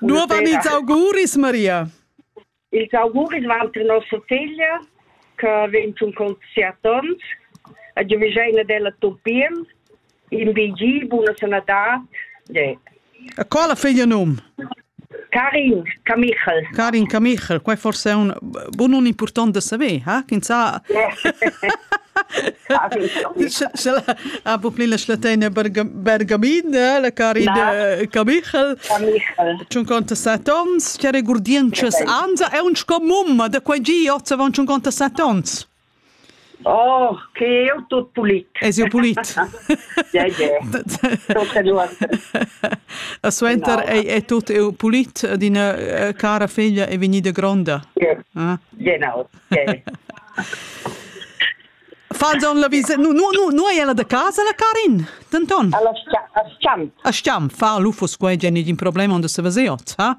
Nuova ils auguris, Maria. Ils auguris van per nostra figlia, che vegn tun con siat ons, a giuvegiaina della Topien, in BG, buona sanadad. Yeah. Co la figlia num? Karin Kamichel. Karin Kamichel, qua forse è un, Bun un important da saver, ha? Ch'ins ha... Sche ha po pli la schlateina Bergamin, la cari de Camichel. Cun conta set ons, che regurdientschas anza, è un sco mumma da quei gi, ozza van cun conta set ons. Oh, che eu tut pulit. Es eu pulit? Ja, ja. E suenter ei, è tut eu pulit d'ina eh, cara figlia è vegnida gronda. Ah? Genau. Yeah. Falzon la visa, nu, nu, nu, nu è la da casa la Karin, Denton? Alla Schiam. A Schiam, fa l'ufos qua, è un problema onde se vesiot, ha?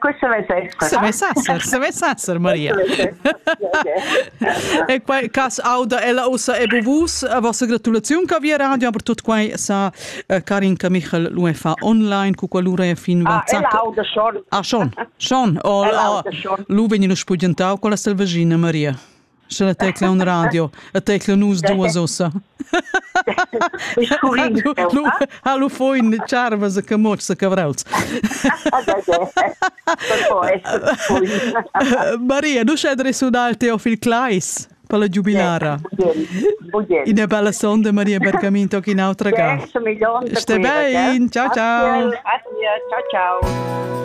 Questo vessa esser. Se vessa esser, se vessa esser Maria. e quai cas auda ella ussa e buvus a vostra gratulaziun che via radio per tot quai sa eh, Karin Michel l'UE fa online cu qualura è fin ah, WhatsApp. Ella auda schon. Ah schon, schon. O, ella auda schon. Lu vegni lo spugentau con la selvagina Maria. Sche la tecla un radio, a tecla nus duas ossa. Lu ha lu foin charvas e camotschs e cavrauls. Maria, nu sched resunal Teofil Kleis per la giubilara. Ina bella sonda Maria Bergaminto che in autra ga. Ste bein, ciao ciao. Ciao ciao.